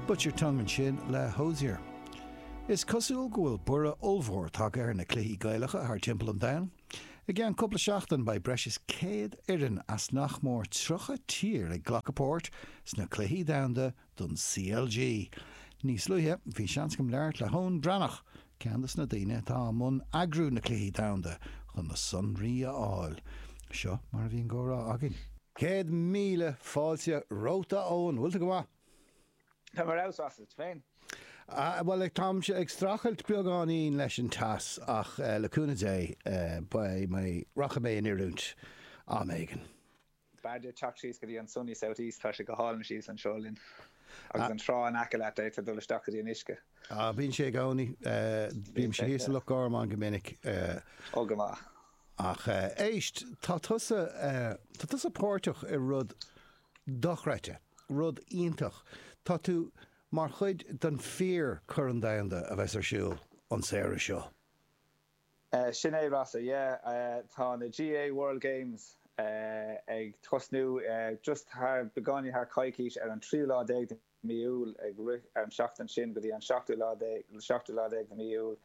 Bite Your Tongue ansin le Hozier. Is cosúil go bhfuil borradh ollmhór tagtha ar na cluichí Gaelacha thar timpeall an domhain. I gceann cúpla seachtain beidh breis is 100 foireann as nach mór 30 tír ag glacadh páirt sna Cluichí Domhanda don CLG. Níos luaithe bhí seans agam labhairt le hEoin Breathnach, ceann des na daoine atá i mbun eagrú na Cluichí Domhanda chun na sonraí a fháil. Seo mar a bhí an comhrá againn. Céad míle fáilte romhat a Eoin, bhfuil tú go maith? Táim ar fheabhas, is tú féin? Bhuel táimse ag streachailt beagáinín leis an teas ach le cúnamh Dé beidh mé, rachaidh mé in oiriúint am éigin. B'fhearr duit teacht síos go dtí an sunny south east, tá sé go hálainn síos anseo linn. Agus an trá in aice leat, d'fhéadfá dul isteach go dtí an uisce. Ah, bíonn sé i gcónaí. Bímse thíos i Loch Garman go minic. Ó, go maith. Ach éist, tá tusa, tá tusa páirteach i rud dochreidte, rud iontach. Tá tú mar chuid den fíor-Chorn Domhanda a bheas ar siúl an samhradh seo. Sin é, Rossa, yeah. Tá na GAA World Games ag tosnú just thar, beagáinín thar coicís, ar an tríú lá déag de mí Iúil, ag rith ar an tseachtain sin go dtí an seachtú lá déag, seachtú lá déag de mí Iúil,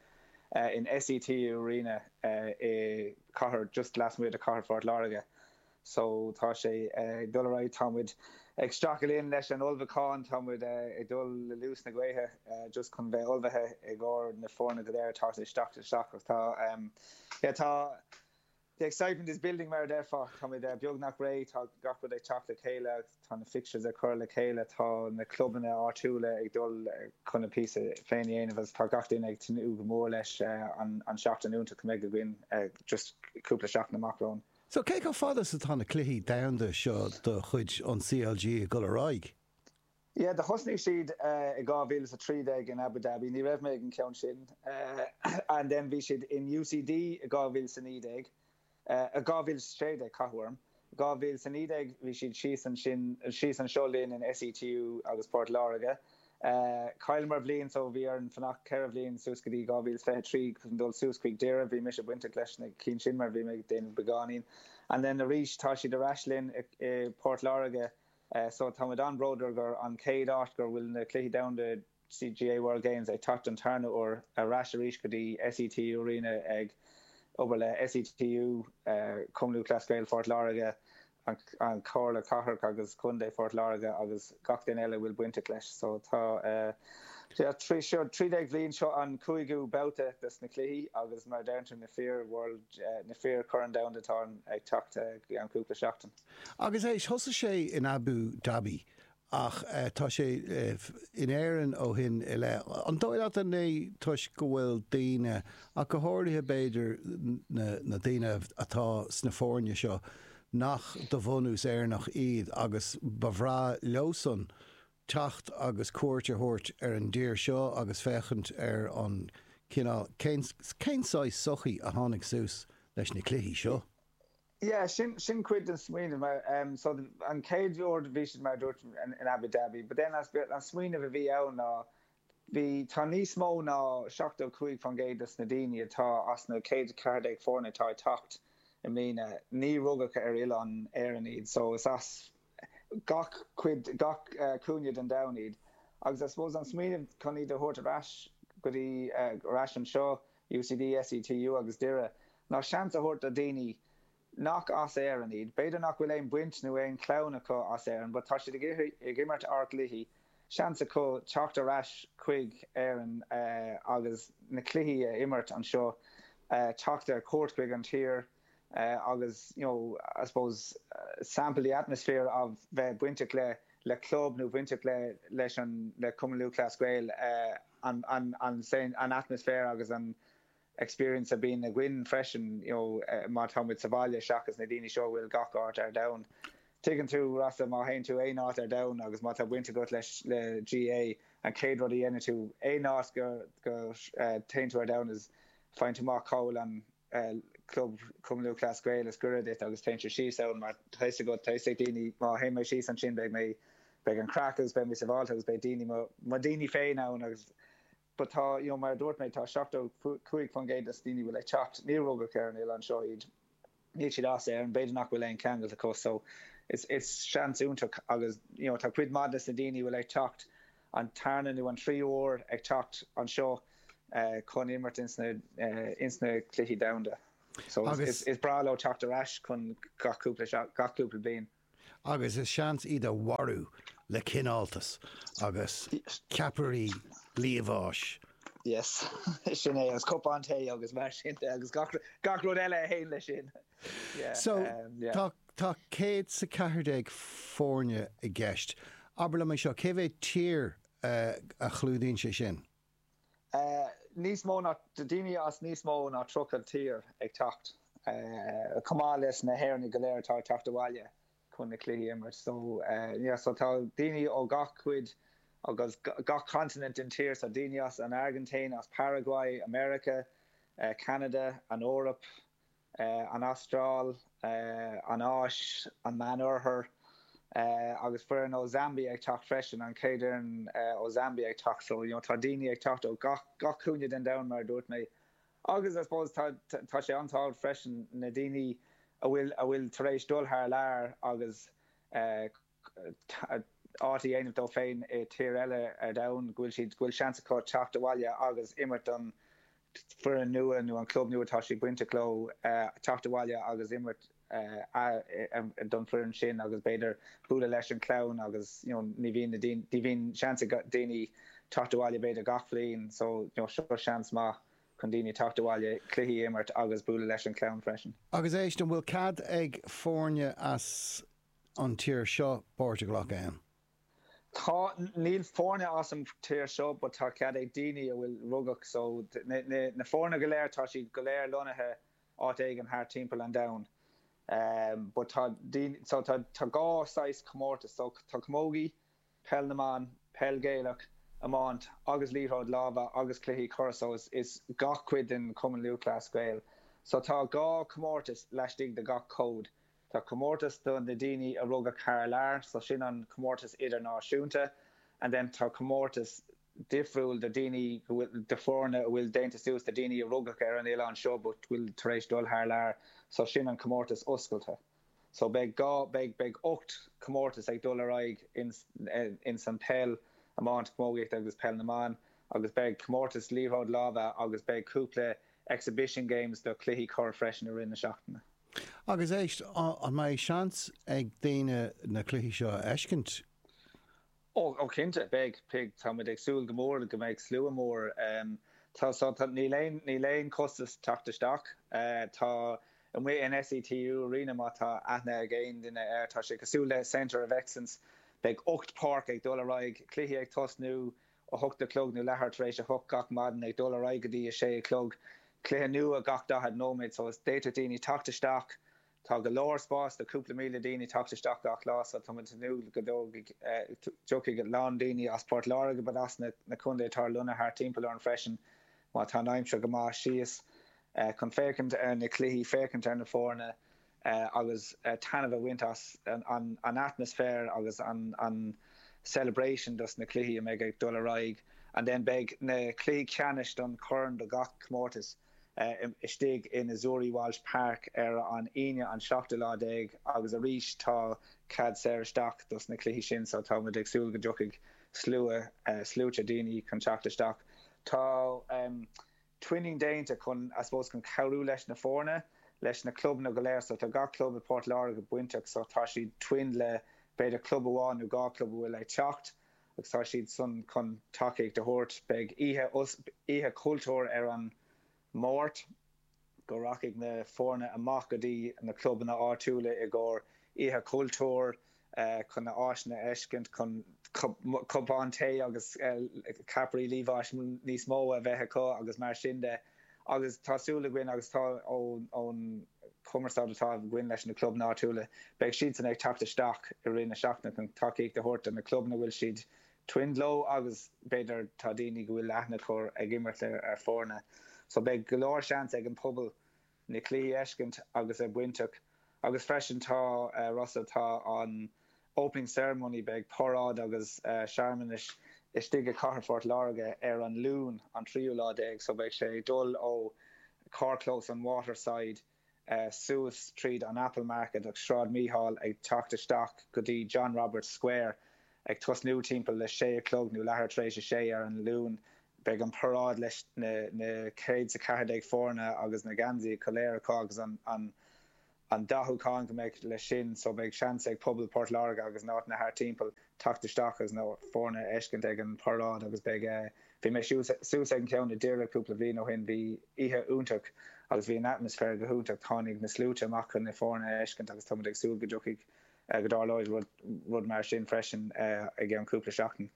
in SETU Arena i cathair, just lasmuigh de cathair Phort Láirge. so tá sé ag dul ar aghaidh, tá muid ag stracadh linn leis an ullmhúchán, tá muid ag dul le luas na gaoithe just chun bheith ullmhaithe i gcomhair na foirne go léir atá ag teacht isteach ach tá yeah tá the excitement is building mar a déarfá, tá muid beagnach réidh, tá gach rud ag teacht le chéile agus tá na fixtures ag cur le chéile, tá na clubanna áitiúla ag dul chun a bpíosa féin a dhéanamh agus tá gach duine ag tnúth go mór leis an tseachtain iontach a mbeidh againn just cúpla seachtain amach romhainn. So, cé chomh fada is atá na cluichí domhanda seo de chuid an CLG ag dul ar aghaidh? Yeah, do thosnaigh siad i 2013 in Abu Dhabi, ní raibh mé ag an cheann sin, and then bhí siad in UCD i 2019, eh 2016 tá cathú orm, 2019 bhí siad síos ansin, síos anseo linn in SETU i bPort Láirge, Chailleamar bliain so bhí orainn fanacht ceithre bhliain suas go dtí 2023 chun dul suas chuig Doire. Bhí mise bainteach leis na cinn sin mar bhí mé ag déanamh beagáinín. And then arís tá siad ar ais linn i bPort Láirge so tá muid an-bródúil gur an chéad áit gur bhfuil na Cluichí Domhanda GAA World Games ag teacht don tarna uair ar ais arís go dtí SETU Arena ag obair le SETU, Cumann Lúthchleas Gael Phort Láirge Comhairle Cathrach agus Contae Phort Láirge agus gach duine eile a bhfuil bainteach leis. So tá eh. trí seo, trí déag bhliain, seo an cúigiú babhta des na cluichí agus mar a deireann tú, na fíor-World, na fíor-Chorn Domhanda atá ag teacht i gceann cúpla seachtain. Agus éist, thosaigh sé in Abu Dhabi Ach tá sé in Éirinn ó shin i leith. An dóigh leat an é toisc go bhfuil daoine, ach go háirithe b'fhéidir na daoine atá sna foirne seo, nach de bhunús Éireannach iad agus ba bhreá leosan teacht agus cuairt a thabhairt ar an dtír seo agus féachaint ar an cineál, cén saghas sochaí a tháinig suas leis na cluichí seo? Yeah, sin, sin cuid den smaoineamh, mar, so an chéad uair bhí siad, mar a dúirt, in Abu Dhabi, but then, an smaoineamh a bhí ann ná, bhí, tá níos mó ná 75% dos na daoine atá, as na 114 foirne atá ag teacht i mbliana, níor rugadh ar oileán na hÉireann iad, so is as gach cuid, gach cúinne den domhan iad, agus I suppose an smaoineamh chun iad a thabhairt ar ais go dtí, ar ais anseo, UCD, SETU agus Doire, ná seans a thabhairt do dhaoine nach as Éirinn iad. B'fhéidir nach bhfuil aon bhaint nó aon chlann acu as Éirinn, but tá siad ag imirt ár gcluichí, seans acu teacht ar ais chuig Éirinn agus na cluichí a imirt anseo, teacht ar cuairt chuig an tír. agus you know I suppose sample the atmosphere a bheith bainteach le le club nó bainteach le leis an le Cumann Lúthchleas Gael an an an an atmosphere agus an experience a bíonn againn freisin you know má tá muid sa bhaile seachas na daoine seo a bhfuil gach áit ar domhan tuigeann tú mar má théann tú aon áit ar domhan agus má tá baint agat leis le GAA an chéad rud a dhéanann tú aon áit go go téann tú ar domhan is faigheann tú amach cá bhfuil an club Cumann Lúthchleas Gael is gaire duit agus téann tú síos ann mar tá fhios agat, tá fhios ag daoine má théann mé síos ansin beidh mé, beidh an craic agus beidh mé sabháilte agus beidh daoine, mo daoine féin ann agus but tá, you know, mar a dúirt mé, tá 75% dos daoine a bhfuil ag teacht, níor rugadh ar an oileán seo iad, níl siad as Éirinn, b'fhéidir nach bhfuil aon cheangal acu so is, is seans iontach agus, you know, tá cuid maith des na daoine a bhfuil ag teacht, an tarna nó an tríú huair ag teacht anseo chun imirt ins na cluichí domhanda so is breá leo teacht ar ais chun gach cúpla bliain. Agus seans iad a mharú le cineáltas agus ceapairí liamháis. Yes, sin é, agus cupán tae agus mar sin de agus gach rud eile a théann leis sin. Tá céad 's a ceathair déag foirne i gceist. Abair liom é seo, cé mhéad tír a chlúdaíonn sé sin? Níos mó ná, daoine as níos mó ná tríocha tír ag teacht, chomh maith leis na hÉireannaigh go léir atá ag teacht abhaile chun na cluichí a imirt. So, yeah, so tá daoine ó gach cuid agus gach continent den tír, so daoine as an Airgintín, as Paraguay, America, Canada, an Eoraip. an Astráil, an Áis, an Meánoirthear agus foireann ó Zambia ag teacht freisin, an chéad fhoireann ó Zambia ag teacht. So, you know, tá daoine ag teacht ó gach, gach cúinne den domhan, mar a dúirt mé. Agus, I suppose, tá, tá sé an-tábhacht freisin, na daoine a bhfuil, a bhfuil tar éis dul thar lear agus eh, áit a dhéanamh dóibh féin i tír eile ar domhan, go bhfuil siad, go bhfuil seans acu teacht abhaile agus imirt don foireann nua nó an club nua atá siad bainteach leo, teacht abhaile agus imirt don foireann sin agus b'fhéidir bualadh leis an clann agus you know ní bhíonn na daoine, bhíonn seans ag daoine teacht abhaile b'fhéidir gach bhliain so you know seo seans maith chun daoine teacht abhaile, cluichí a imirt agus bualadh leis an chlann freisin. Agus éist, an bhfuil cead ag foirne as. an tír seo páirt a ghlacadh ann? Tá. Níl foirne as an tír seo but tá cead ag daoine a bhfuil rugadh so na foirne go léir tá siad go léir lonnaithe áit éigin thart timpeall an domhain but tá daoine so tá tá dhá saghas comórtas so tá camógaí, peil na mban, peil Ghaelach, iomáint agus liathróid láimhe agus cluichí corr so is is gach cuid den Chumann Lúthchleas Gael so tá dhá comórtas laistigh de gach cód. Tá comórtas do na daoine a rugadh thar lear, so sin an comórtas idirnáisiúnta, and then tá comórtas difriúil do daoine, do foirne a bhfuil déanta suas de daoine a rugadh ar an oileán seo but bhfuil tar éis dul thar lear, so sin an comórtas oscailte. So beidh dhá, beidh, beidh ocht comórtas ag dul ar aghaidh ins, ins an peil, iomáint, camógaíocht agus peil na mban agus beidh comórtas liathróid láimhe agus beidh cúpla exhibition games do cluichí corr freisin i rith na seachtaine. Agus éist, an mbeidh seans ag daoine na cluichí seo a fheiscint? Ó cinnte, beidh, beidh. Tá muid ag súil go mór go mbeidh slua mór. Tá, tá, tá, níl aon, níl aon costas teacht isteach. Tá, amuigh in SETU Arena, má tá aithne ag aon duine air, tá sé cosúil le Centre of Excellence. Beidh ocht páirc ag dul ar aghaidh, cluichí ag tosnú a hocht a chlog nó leathuair tar éis a hocht gach maidin ag dul ar aghaidh go dtí a sé a chlog, cluiche nua gach daichead nóiméad so d'fhéadfadh daoine teacht isteach, tá go leor spáis do cúpla míle daoine teacht isteach gach lá so tá muid ag tnúth go dtiocfaidh a lán daoine as Port Láirge but as na contaetha atá ar lonnaithe thart timpeall orainn freisin má tá an aimsir go maith síos chun féachaint ar na cluichí, féachaint ar na foirne. agus taitneamh a bhaint as an atmaisféar agus an celebration dos na cluichí a mbeidh ag dul ar aghaidh and then beidh na cluichí ceannais don chorn do gach comórtas istigh in Azzurri Walsh Park ar an Aoine an seachtú lá déag agus arís tá cead saor isteach dos na cluichí sin so tá muid ag súil go dtiocfaidh slua, sluaite daoine chun teacht isteach. Tá. twinning déanta chun, I suppose, chun cabhrú leis na foirne, leis na clubanna go léir. So tá gach club i bPort Láirge bainteach so tá siad twin le b'fhéidir club amháin nó dhá club a bhfuil ag teacht agus tá siad san chun tacaíocht a thabhairt. Beidh oíche, oíche chultúir ar an Máirt go rachaidh na foirne amach go dtí na clubanna áitiúla i gcomhair oíche chultúir. chun na áiseanna a fheiscint, chun cupán tae agus ceapairí liamháis níos mó a bheith acu agus mar sin de. Agus tá súil againn, agus tá ón chumarsáid atá againn leis na clubanna áitiúla, beidh siadsan ag teacht isteach i rith na seachtaine chun tacaíocht a thabhairt do na clubanna a bhfuil siad twinned leo agus b'fhéidir tá daoine go bhfuil aithne acu ag imirt le foirne. So beidh go leor seans ag an pobal. na cluichí a fheiscint agus a bheith bainteach agus freisin tá rud atá an Opening Ceremony beidh paráid agus searmanais istigh i Cathair Phort Láirge ar an Luan an tríú lá déag so beidh sé ag dul ó charrchlós an Waterside suas tríd an Apple Market agus Sráid Mícheál ag teacht isteach go dtí John Roberts Square Ag tosnú timpeall a sé a chlog, nó leathuair tar éis a sé, ar an Luan, beidh an paráid leis na céad 's a ceathair déag foirne agus na geansaí go léir acu agus an dathúchán go mbeidh leis sin so beidh seans ag pobal Port Láirge agus na háiteanna thart timpeall teacht isteach agus na foirne a fheiscint ag an paráid agus beidh, bhí mé suas ag an gceann i nDoire cúpla bhliain ó shin, bhí oíche iontach agus bhí an atmaisféar go hiontach, tháinig na sluaite amach chun na foirne a fheiscint agus tá muid ag súil go dtiocfaidh. go dtarlóidh rud mar sin freisin i gceann cúpla seachtain.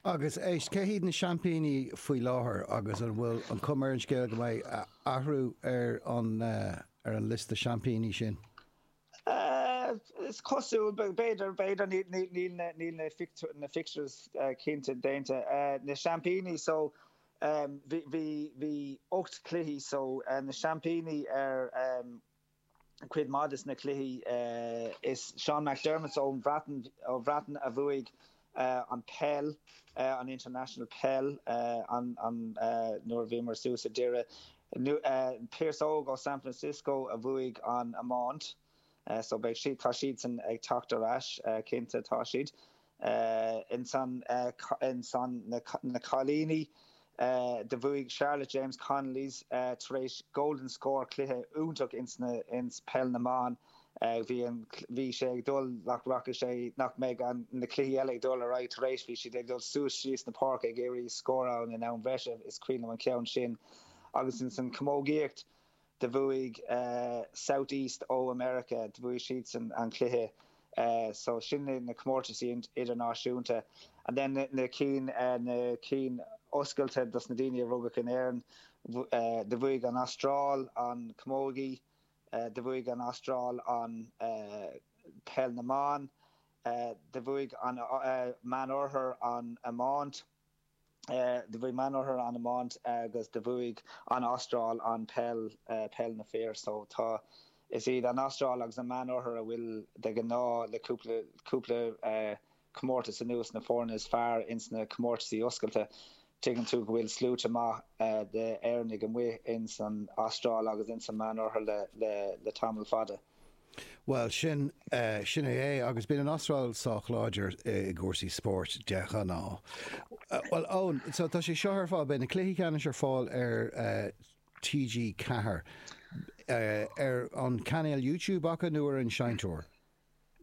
Agus éist, cé hiad na seaimpíní faoi láthair agus an bhfuil an chuma ar an scéal go mbeidh athrú ar an liosta seaimpíní sin? Is cosúil, b'fhéidir, b'fhéidir, níl na fixtures cinnte déanta. Na seaimpíní so, bhí ocht cluichí so, na seaimpíní ar. cuid maith de na cluichí. Is Seán McDermott ón Bhreatain a bhuaigh an peil, an International Peil, nuair a bhíomar suas i nDoire. Pearse Óg ó San Francisco a bhuaigh an iomáint. So beidh siad, tá siadsan ag teacht ar ais, cinnte, tá siad. Ins an na cailíní do bhuaigh Charlotte James Connolly's tar éis Golden Score cluiche iontach ins na ins peil na mban. Bhí an bhí sé ag dul nach rachaidh sé nach mbeidh an na cluichí eile ag dul ar aghaidh tar éis bhí siad ag dul suas síos na páirce ag iarraidh scór in am bhreise. Is cuimhin liom an ceann sin agus ins an camógaíocht Do bhuaigh South East of America, do bhuaigh siadsan an cluiche so sin na comórtaisí idirnáisiúnta and then na cinn, na cinn oscailte dos na daoine a rugadh in Éirinn, do bhuaigh an Astráil an Camogie, do bhuaigh an Astráil an Peil na mBan, do bhuaigh an Meánoirthear an Iomáint. do bhuaigh an Meánoirthear an iomáint agus do bhuaigh an Astráil an peil, peil na fir so tá, is iad an Astráil agus an Meánoirthear a bhfuil de ghnáth le cúpla, cúpla comórtas anuas na foirne is fearr ins na comórtasaí oscailte. Tuigeann tú go bhfuil sluaite maith de Éireannaigh amuigh ins an Astráil agus ins an Meánoirthear le, le, le tamall fada. Bhuel, sin, sin é é, agus bíonn an Astráil sách láidir i gcúrsaí spóirt de ghnáth. Bhuel, Eoin, so tá sé seo ar fáil, beidh na cluichí ceannais ar fáil ar TG4, ar an chainéal YouTube acu nó ar an seinnteoir?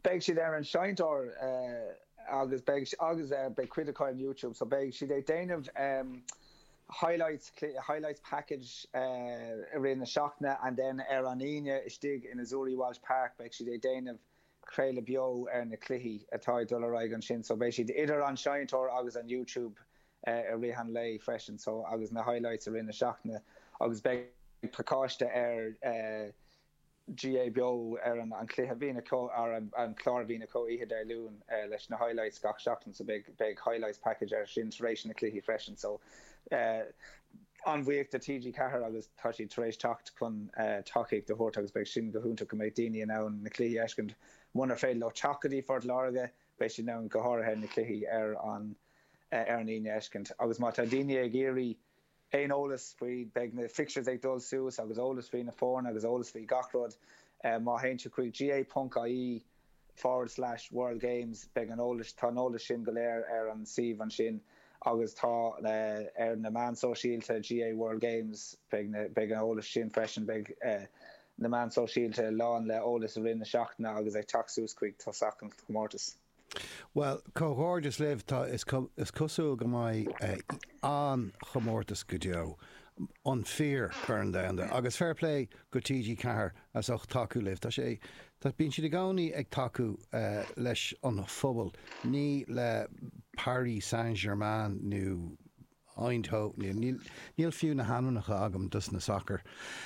Beidh siad ar an seinnteoir agus beidh, agus beidh cuid acu ar YouTube, so beidh siad ag déanamh, highlights, highlights package i rith na seachtaine and then ar an Aoine istigh in Azzurri Walsh Park beidh siad ag déanamh craoladh beo ar na cluichí atá ag dul ar aghaidh ansin so beidh siad idir an seinnteoir agus an YouTube i rith an lae freisin so agus na highlights i rith na seachtaine agus beidh pacáiste ar GAA Beo ar an chluiche. Ó, ar an clár, Mícheál Ó Domhnaill oíche Dé Luain leis na highlights gach seachtain so beidh highlights package air sin tar éis na cluichí freisin so an-bhuíoch de TG4 agus tá siad tar éis teacht chun tacaíocht a thabhairt agus beidh sin go hiontach go mbeidh daoine in ann na cluichí a fheiscint munar féidir leo teacht go dtí Phort Láirge beidh siad in ann go háirithe na cluichí ar an ar an Aoine a fheiscint agus má tá daoine ag iarraidh aon eolas faoi, beidh na fixtures ag dul suas agus eolas faoi na foirne agus eolas faoi gach rud má théann sibh chuig GAA ponc IE forward slash world games beidh an eolas, tá an eolas sin go léir ar an suíomh ansin agus tá ar na meán sóisialta GAA world games beidh na, beidh an eolas sin freisin beidh na meán sóisialta lán le eolas i rith na seachtaine agus ag teacht suas chuig tosach an chomórtais. Bhuel, comhghairdeas libh, tá, is cosúil go mbeidh an-chomórtas go deo, an fíor Corn Domhanda, agus fair play go TG Ceathair as ucht tacú libh, tá sé, bíonn siad i gcónaí ag tacú leis an phobal, ní le Paris Saint Germain nó. Eindhoven. Níl, níl, níl fiú na hainmneacha agam dos na sacar.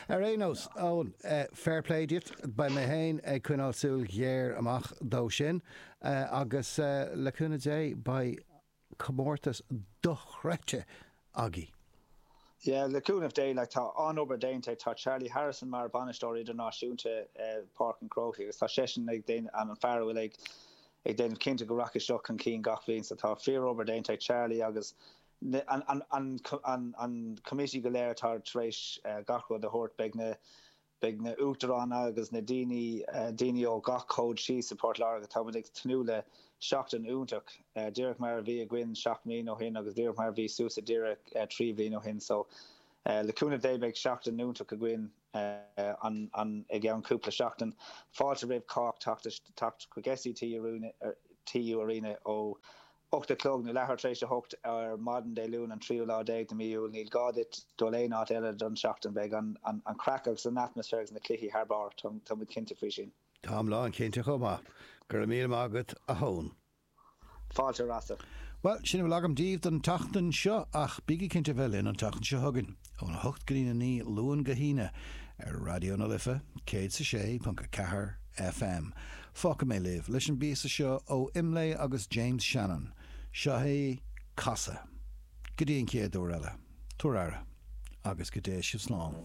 Ar aon nós, Eoin, fair play duit, beidh mé féin ag coinneáil súil ghéar amach dó san agus le cúnamh Dé beidh comórtas dochreidte againn. Yeah, le cúnamh Dé, like, tá an-obair déanta ag, tá Charlie Harrison mar bhainisteoir idirnáisiúnta Páirc an Chrócaigh agus tá seisean ag déanamh, an fear a bhfuil ag, ag déanamh cinnte go rachaidh seo chun cinn gach bhliain so tá fíorobair déanta ag Charlie agus an committee go léir atá tar éis gach rud a thabhairt. Beidh na uachtaráin agus na daoine daoine ó gach cód síos i bPort Láirge. Táimid ag tnúth le seachtain iontach, díreach mar a bhí againn seacht mbliana ó shin agus díreach mar a bhí suas i nDoire trí bhliain ó shin so le cúnamh Dé beidh seachtain iontach againn. i gceann cúpla seachtain. Fáilte roimh chách teacht chuig SETU Arena ó 8 a chlog nó leathuair tar éis a hocht ar maidin Dé Luain an tríú lá déag de mí Iúil. Níl gá duit dul aon áit eile don tseachtain. Beidh an chraic agus an atmaisféar agus na cluichí thar barr, tá muid cinnte faoi sin. Táim lán cinnte chomh maith. Go raibh míle maith agat a Eoin. Fáilte Rossa. Bhuel, sin a bhfuil agam daoibh don tseachtain seo, ach bígí cinnte a bheith linn an tseachtain seo chugainn, ón 8 go dtí'n 9, Luan go hAoine, ar Raidió na Life, céad is a sé ponc a ceathair FM. Fágfaidh mé libh leis an bpíosa seo ó Imlé agus James Shannon. Seo é Casadh. Go dtí an chéad uair eile, tabhair aire, agus go dté sibh slán.